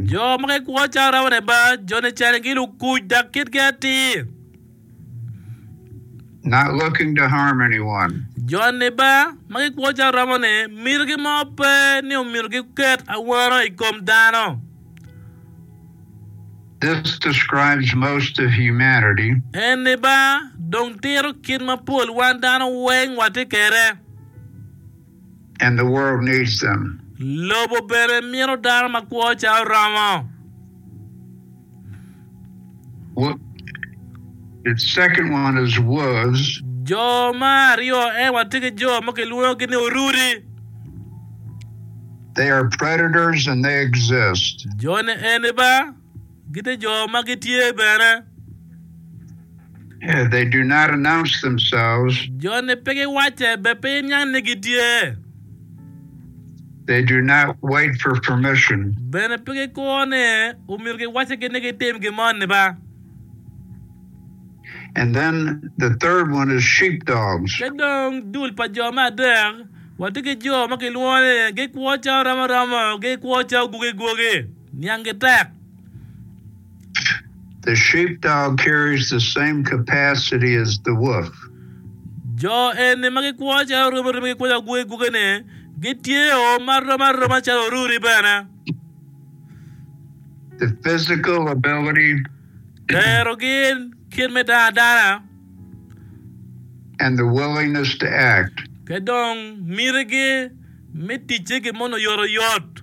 Jo ma gikwo calo rabo leba, joni cani gi lukuc dok kitgi atir. Jon leba ma gikwo calo rabo-ni mitogi mo pe ni omyero giket awano i kom dano. En leba dong tito kit ma pol wan dano weng watye kwede. and the world needs them. Lobo bene mito dano makwo calo romo. The second one is wolves. Jo ma aryo en watye ki jo ma kilwongogi ni orudi. They are predators and they exist. Jone eni ba Gite jo ma gitye bene. Yeah, they do not announce themselves. Joni pe giwacce be piny niang ni gitye. They do not wait for permission. Bene pe gikuro ni omyero giwacce gin ni gitim gin moni ba. And then the third one is sheepdogs. Ki dong dul pa jo me adek, watye ki jo ma kilwongo ni gikwo calo romo romo, gikwo calo gwogi gwogi. Niangi tek. The sheepdog carries the same capacity as the wolf. Jo eni ma gikwo calo orubi orubi gikwo calo gwogi gwogi-ni, gitye o ma rom aroma calo oruri bene. The physical ability. Tero gin, kit me dano adana. And the willingness to act. Ki dong mitigi me ticce gin moni oyotoyot.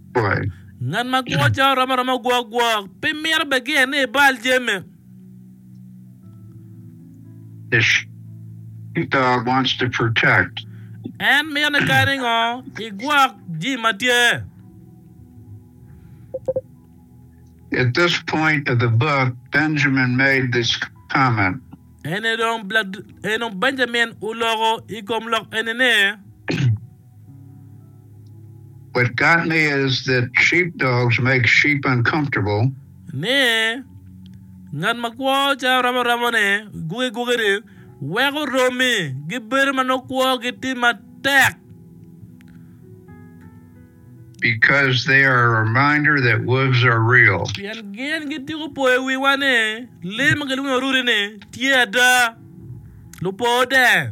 Bal. Ngat ma gwo cawa romo aroma gwo agwok, pe mito bed ki en ni ibal jami. Eshitah wants to protect. En mito ni kadi ngo igwok jami ma tye. At this point of the book, Benjamin made this comment. Eni dong, eni dong Benjamin oloko i kom lok eni ni. What got me is that sheepdogs make sheep uncomfortable. Ni, Ngat ma kwo cayo romo romone, guge gugene, weko romi gibedo ma nongo kwogi tye matek. Because they are a reminder that wolves are real. Pien gin gityeko poyo wiwa ni lee ma gilwongo ni orudi-ni tye ada, lupo-de.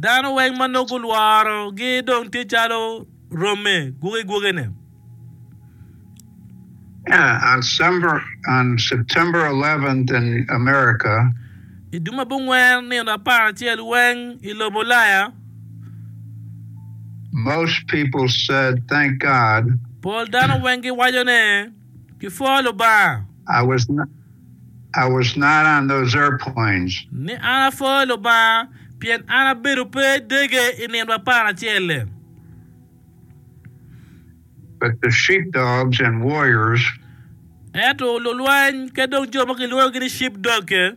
Dano weng ma nongo gulworo gi dong tye calo romme gwoke gwokene. Yeah, on December, on September 11th in America, I dwe ma bungwen nino apar acel weng i lobo Ulaya, most people said, Thank God, pol dano weng giwaco ne, ki pwo Lubanga. I was I was not on those airplanes. Ni an apwo Lubanga, pien an abedo pe i dege i nino apar acel-le. But the sheepdogs and warriors. Ento lulweny ki dong jo ma kilwongogi ni sheepdog-ge.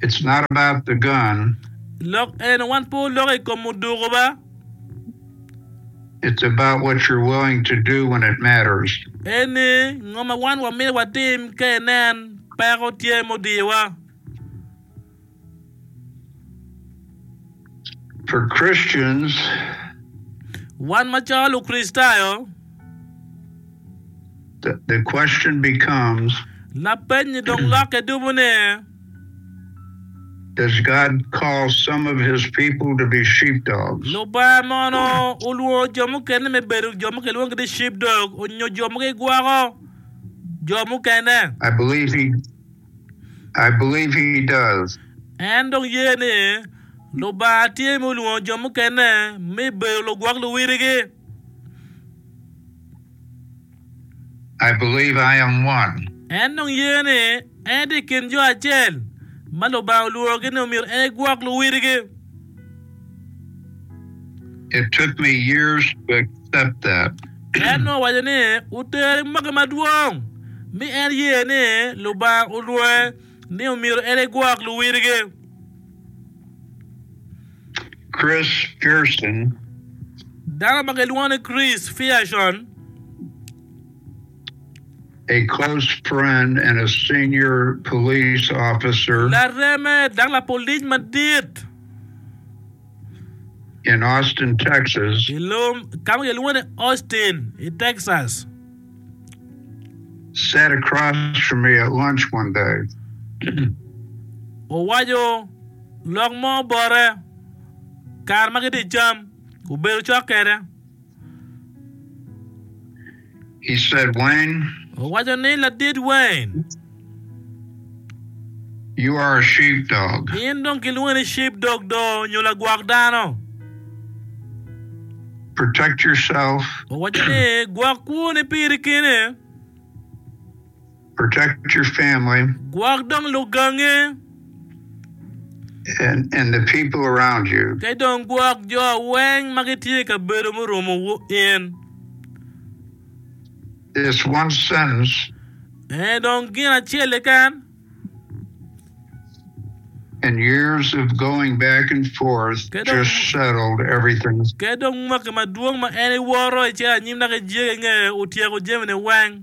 It's not about the gun. Lok eno, wan pe wuloko i kom oduku ba. It's about what you're willing to do when it matters. En ni, ngo ma wan wamito watim ka inen peko tye mudiyowa. For Christians, Wan macalo Lukricitayo, the, the question becomes lapeny-nyi dong lokke dumo ni, Does God call some of His people to be sheepdogs? Lubanga mono olwongo jo mukene me bedo jo ma kilwongo ni sheepdog onyo jo ma gigwoko jo mukene? I believe He, I believe he does. En dong ye ni Lubanga tye ma olwongo jo mukene me bedo lugwok luwiligi. I believe I am one. En dong ye ni en tye i kin jo acel ma Lubanga olwogi ni omyero en egwok luwiligi. It took me years to accept that. En nongo owaco ni, Otere i mwaki madwong, mi en ye ni Lubanga olwonge ni omyero en egwok luwilgi. Chris Pearson. Dano ma gilwongo ni Chris Pearson. a close friend and a senior police officer. Lareme dok lapolic madit. In Austin, Texas. I lum ka ma kilwongo ni Austin i Texas. Sat across from me at lunch one day. Owaco lok mo bote kare ma gitye i cam, obedo cok kwede. he said, Wayne. Owaco ni, Ladit Wayne. You are a sheepdog. In dong kilwongi ni sheepdog do, nyo lagwok dano. Protect yourself. Owaco ni, Gwok kwoni piri kene. Protect your family. Gwok dong lugangi. And, and the people around you. Ki dong gwok jo weng ma gitye i kabedo murumo in. This one sentence. Eh, dong gin acel keken. And years of going back and forth just settled everything. Ke dong mwaki madwong ma en iworo ice anyim dok ijege inge otyeko jami ni weng.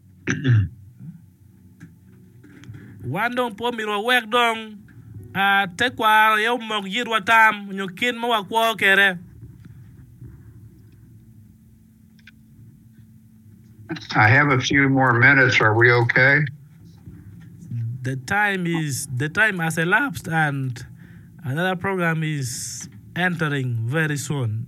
Wan dong pe omyero wawek dong tekwaro aye omok yitwa tam nyo kit ma wakwo kwede. I have a few more minutes. Are we okay? The time is the time has elapsed and another program is entering very soon.